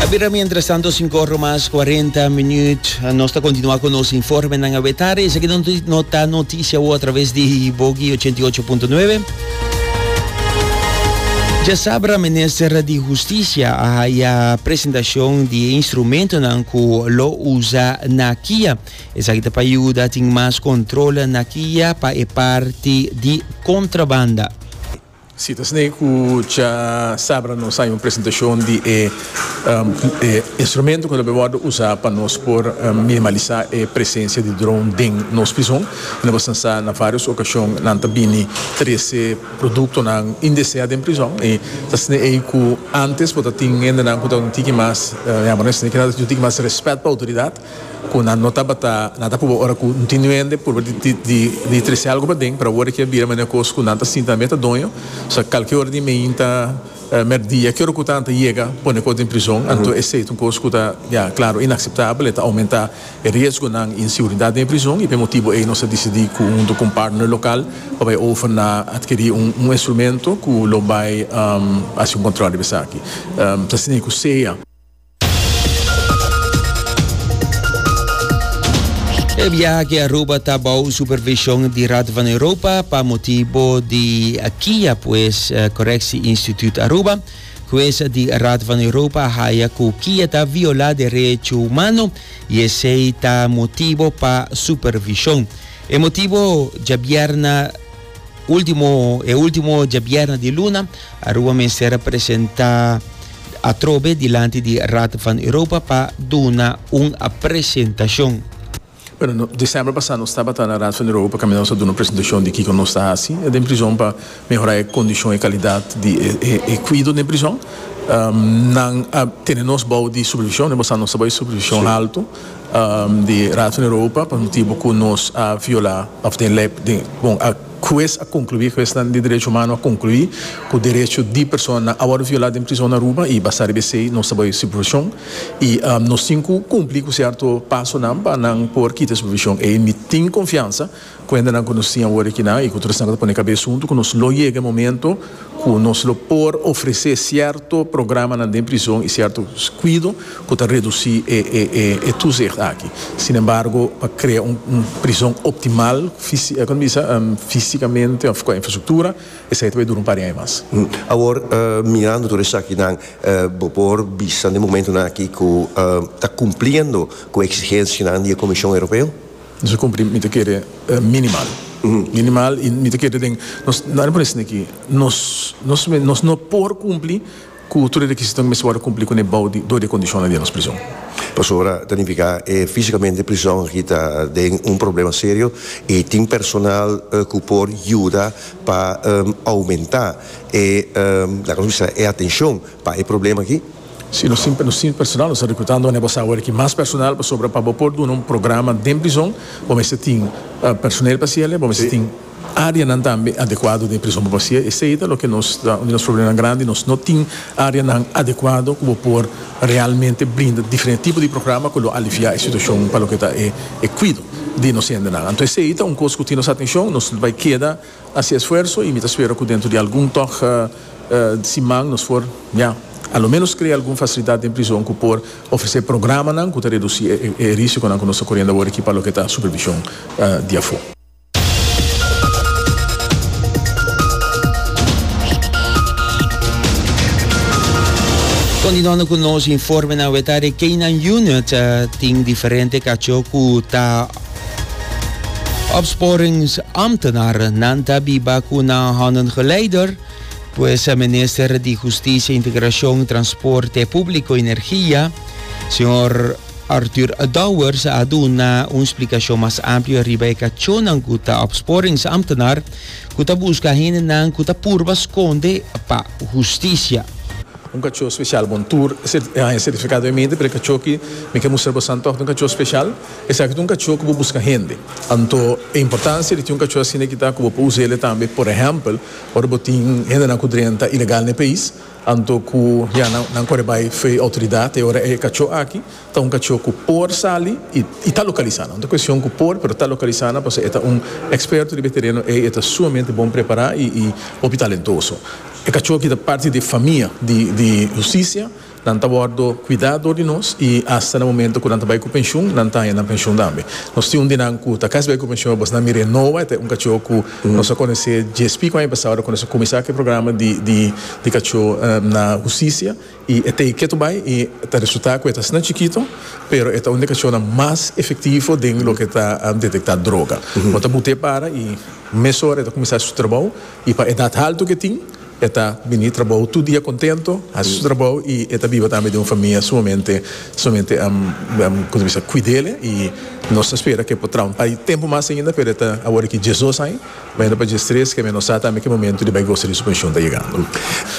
A bira mientras tanto, 5 horas más 40 minutos. Ah, Nos está continuando con los informes en Abetar. Esa que no noti- no está noticia o a través de Bogi 88.9. Ya sabra minister di Justicia a haya presentación di instrumento nan cu lo usa na kia. Esa que te pa ayuda tin más control na kia pa e parti di contrabanda. Si ta esei ku cha sabra nos hay un presentashon di e instrumento ku lo por wòrdu usa pa nos por minimalisá e presensia di dron den nos prizon. Mi lo por sa na varios okashon nan ta bini trese produktonan indesea den prizon i ta esei ei ku antes por ta tin hendenan ku ta un tiki mas yamber no esei keda ta tin un tiki mas rèspèt pa outoridat. Cu nan no tabata nan ta proba ora cu tin nuende proba di trece algo paden pero awor kia bira manera cos cu nan ta sinta nan be ta doño so calkier ora di meinta merdia kier ora cu nan ta yega pone cos den prizon anto esey ta un cos cu ta ya claro inaceptabel y ta aumenta e riesgonan y inseguridad den e prizon y p'e motibo ey nos a dicidi cu hunto cu un partner local pa bay over na adquiri un instrumento cu lo bay haci un control riba esaki ta scina cu sea. E biaha aki Aruba ta bou supervishon di Raad van Europa pa motibo di kia pues Correctie Instituut Aruba. Hues di Raad van Europa a haya ku kia ta viola derecho humano i esei ta motibo pa supervishon. E motibo djabièrna Ultimo, e ultimo djabièrna di luna, Aruba mester a presenta atrobe dilanti di Raad van Europa pa duna un presentashon. Bueno, no, december pasá nos tabata na Raad van Europa pa caminda nos a duna un presentashon di kico nos ta haci den prizon pa mehorá e condishon, e calidad di e cuido den prizon. Nan a tene nos bou di supervishon, den pasá nos tabata di supervishon halto. di Raad van Europa pa motibu cu nos a viola of den ley bon a huez a conclui hueznan di derecho humano a conclui cu derecho di personanan a worde viola den prison na Aruba y basa riba esey nos ta bay supervision y nos tin cu cumpli cu cierto pasonan pa nan por kita e supervision ey mi tin confiansa Ku hendenan ku nos tin awor aki nan i ku tur esnan ku ta pone kabes huntu ku nos lo yega e momento ku nos lo por ofresé sierto programanan den prizon i sierto kuido ku ta redusí e tuzicht aki. Sin embargo pa krea un prizon optimal kòm ta bisa físikamente òf ku infrastruktura esei ta bay dura un par di aña mas. Awor mirando tur esakinan bo por bisa den momentunan aki ku ta kumpliendo ku e eksigensianan di e Komishon Europeo? Nos a cumpli mi ta kere minimal minimal y mi ta kere den nos nan a pone asina aki nos nos mes nos no por cumpli cu tur e requisitonan cu mester worde cumpli cun e bou di dor di e condicionnan di e nos prison. Pasobra ta nifica e fisicamente prison aki ta den un problema serio y tin personal cu por yuda pa aumenta e laga nos bisa e atencion pa e problema aki. Si nos tin sin personal nos ta rekrutando manera bo sa awor aki mas personal pasobra pa bo por duna un programa den prizon bo mester tin personel pa hasiel bo mester tin areanan tambe adekuado den e prizon pa hasiel esei ta loke nos ta un di nos problemanan grandi nos no tin areanan adekuado ku bo por realmente brinda diferente tipo di programa ku lo aliviá e situashon pa loke ta e e kuido di nos hendenan anto esei ta un kos ku tin nos atenshon nos bai keda. hasi esfuerso y mi ta spera cu dentro di algun tog siman nos por ya a lo menos crea algun facilidad den prison cu por ofrece programanan cu ta reduci e risiconan cu nos ta coriendo awor aki pa loke ta supervision di afo. Continuando cu nos informenan we ta Rekening Unit tin diferente cacho cu ta. Opsporingsambtenaar nan ta biba cu nan handen geleider, pues Minister di Husticia, Integracion, Transporte Publico y Energia, Señor Arthur Dowers a duna un splicacion mas amplio riba e cacionnan cu ta opsporingsambtenaar cu ta busca hendenan cu ta purba sconde pa husticia. Un cachó special bon tur e haña certificado e minte pero e cachó aki mi ke mustra boso antoh ta un cachó special. Esaki ta un kachó ku bo buska hende. Anto e importansia di tin un kachó asina ki ta ku bo por usa el'e tambe, por ehèmpel, ora bo tin hendenan ku drenta ilegal na e pais, anto ku ya nan kore bai frei outoridat. E ora e kachó aki ta un kachó ku por sali i i ta lokalisá nan. No ta kuestion ku por, pero ta lokalisá nan pasobra e ta un eksperto riba e tereno ei, e ta sumamente bon prepará i hopi talentoso. E kachó aki ta parti di e famia di di hustisia. Nan ta wòrdu kuidá dor di nos i asta na momentu ku nan ta bai ku penshun, nan ta haña nan penshun tambe. Nos tin un di nan ku ta kasi bai ku penshun e bosnan mir'é Noah, e ta un kachó ku nos a konosé JSP ku aña pasá ora ku nos a kuminsá ku e programa di kachó na Hustisia i e ta e ketu bai i ta resultá ku e ta asina chikitu pero e ta un di e kachónan mas efektivo den loke ta detektá droga. Bo ta but'é para i mesora e ta kuminsá su trabou i pa edat haltu ku e tin, E ta bini trabou tur dia contento, haci su trabou y e ta biba tambe den un famia sumamente sumamente con ta bisa cuidele y nos ta spera cu e por traun pa'i tempo mas ainda pero e ta awor aki dje dos aña bayendo pa djes tres keme nos sa tambe cu e momento di bay gosa di su pension ta yegando.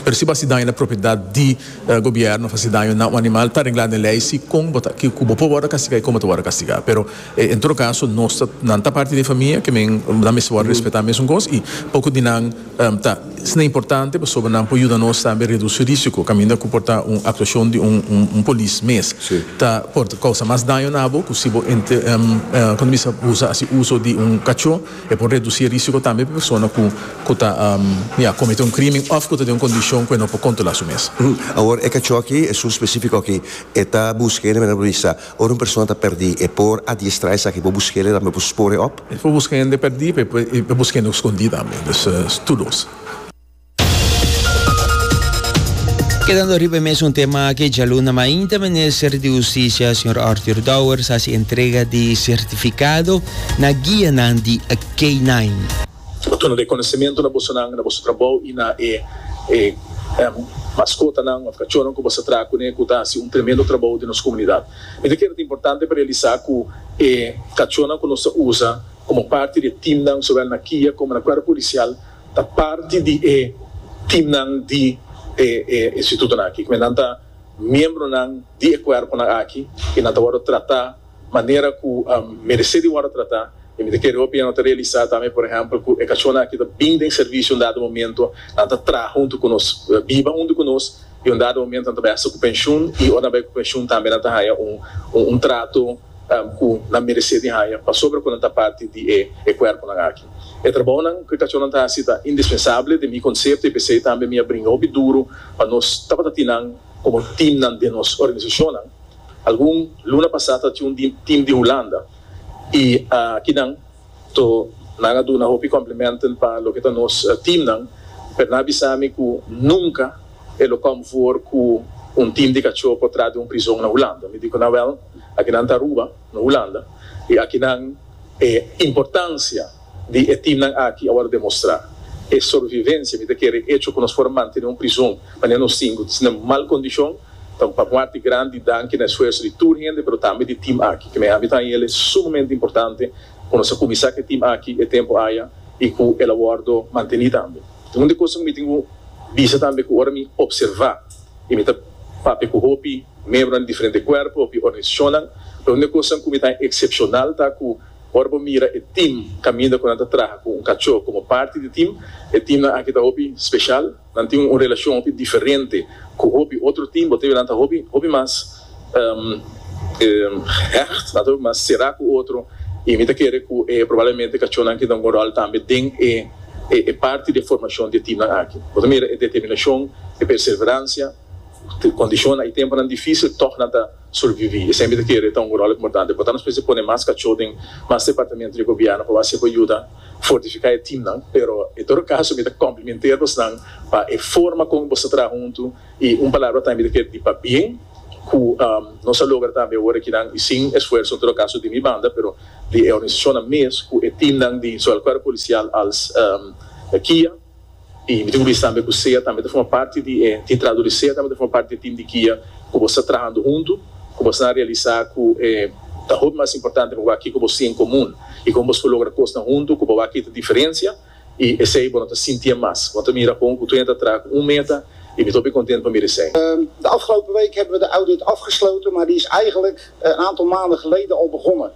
Pero si bo haci daño na propiedad di gobierno of haci daño na un animal ta regla den ley si con bo ta kico bo por wordo castiga y con bo ta wordo castiga pero en todo caso nos ta nan ta parti di e famia ke men nan mester wordo respeta mesun cos y poco di nan Ta esnan importante pasobra nan por yuda nos tambe reduci risico caminda cu por ta un actuacion di un polis mes ta por causa mas daño na bo cu si bo cuando mester usa haci uso di un cacho e por reduci e risico tambe pa persona cu ta ya comete un crimen of cu ta den un condicion cu e no por controla su mes. Awor e cacho aki, esun specifico aki, e ta busca e na manera bo bisa. Ora un persona ta perdí, e por adiestrá esaki, por busk'el, e tambe por spór'e op. E por buska hende perdí, e por buska hende ku skondí tambe. Dus, tur dos. Kedando riba e mes un tema aki djaluna mainta, Minister di Hustisia, señor Arthur Dowers, a hasi entrega di sertifikado na guianan di K-9. Bo duna rekonesementu na bosonan, na boso trabou i na e e maskotanan òf kachónan ku bo sa traha kuné ku ta hasi un tremendo trabou den nos komunidat. Mi ta kere ta importante pa realisá ku e kachónan ku nos ta usa komo parti di e timnan sowel na kia komo na kuerpo polisial ta parti di e timnan di e e institutonan akí. Nan ta miembronan di e kuerponan akí i nan ta wòrdu tratá. manera ku meresé di wòrdu tratá i mi ta kere hopi nan ta realisá tambe por ehèmpel ku e kachónan aki ta bin den servisio un dado momentu nan ta traha huntu ku nos biba huntu ku nos i un dado momentu nan ta bai hasta ku penshun i ora nan bai ku penshun tambe nan ta haña un un trato ku nan meresé di haña pasobra ku nan ta parti di e e kuerponan aki e trabounan ku e kachónan ta hasi ta indispensable den mi konsepto i p'esei tambe mi a bringa hopi duru pa nos tabata tin nan komo timnan den nos organisashonnan. Algun luna pasá ta tin un tim di Hulanda i akinan to nan a duna hopi complimenten pa loke ta nos timnan, pero nan a bisa mi ku nunka e lo kom for ku un tim di kachó por tras di un prizon na Hulanda. Mi di ku nan, Wèl, akinan ta Aruba, no Hulanda, i akinan e importansia. di e teamnan aki a wòrdu demostrá. E sorvivensia mi ta kere e echo ku nos por mantené un prizon manera nos sinku ta na mal kondishon ta un papuarti grandi danki na esfuerso di tur hende pero tambe di team aki ku me habitan i el e sumamente importante ku nos a kuminsá ku e team aki e tempu aya i ku el a wòrdu mantení tambe. Tin un di e kos ku mi tin ku bisa tambe ku ora mi opservá i mi ta papia ku hopi miembronan di diferente kuerpo hopi organisashonnan lo un di e kosnan ku mi ta eksepshonal ta ku Ora bo mira e tim kaminda ku nan ta traha ku un kachó komo parti di tim, e timnan aki ta hopi speshal. Nan tin un relashon hopi diferente ku hopi otro tim. Bo ta mira nan ta hopi hopi mas hecht, nan ta hopi mas será ku otro. I mi ta kere ku e probablemente kachónan aki ta un ròl tambe den e e parti di e formashon di e timnan aki. Bo ta mira e determinashon, e perseveransia, kondishonnan i tempunan difísil, tòg nan ta. Surviví. E semper ta kere e ta un ròl importante. Por tanto nos mester pone mas kachó den mas departamentu di gobièrnu pa base ku yuda fortifiká e timnan. Pero en todo kaso mi ta komplimenté bosnan pa e forma kon bos ta traha huntu i un palabra tambe mi ta kere di pa bien ku nos a logra tambe awor aki nan i sin esfuerso en todo kaso di mi banda pero di e organisashonnan mes ku e timnan di zowel Kuerpo Polisial als Kia. I bo tin ku bisa tambe ku sea tambe ta forma parti di e titrador i sea tambe ta forma parti di e tim di guia ku bo sta trahando huntu ku bo asina realisa ku e ta hopi mas importante pa bo a kiko bo tin en komun i kon boso por logra kosnan huntu ku bo a kita diferensia i esei bo no ta sinti e mas bo ta mira kon ku tur hende ta traha ku un meta i mi ta hopi kontent pa mira esei. De afgelopen week hebben we de audit afgesloten, maar die is eigenlijk een aantal maanden geleden al begonnen.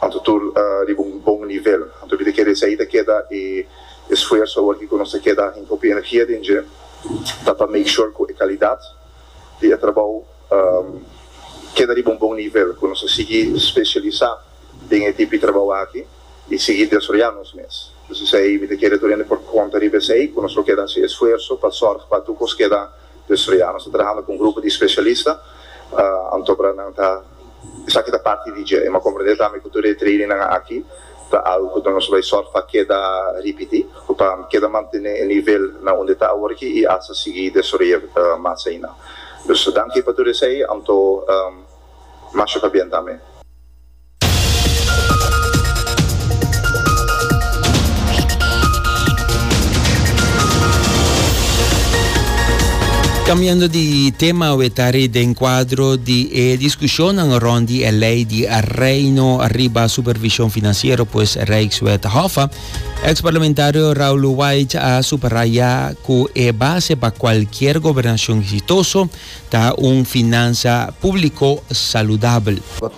Anto tur riba un bon nivel. Anto mi ta kere esei ta keda e esfuerso awor ki ku nos ta keda hinka hopi energia den dje ta pa make sure ku e kalidat di e trabou keda riba un bon nivel, ku nos ta sigui spesialisá den e tipo di trabou aki i sigui desroyá nos mes. Entonces esei mi ta kere tur hende por konta riba esei ku nos lo keda hasi esfuerso pa sòrg pa tur kos keda. Dus lo ya nos ta trahando ku un grupo di spesialista, anto para nan ta, esaki ta parti di dje, e m'a komprendé tambe ku tur e trainingnan aki ta algu ku nos bai sòrt pa keda ripití ku pa keda mantené e nivel na unda e ta awor aki i hasta sigui desaroy'é mas aina. Dus danki pa tur esei, anto masha pa bien tambe. Cambiando di tema awe ta ri den cuadro di e discusionnan rond di e ley di Reino riba supervision financiero pues Rijkswet Hoffa, ex parlamentario Raul White a subraya cu e base pa cualkier gobernacion exitoso ta un finansa publico saludabel.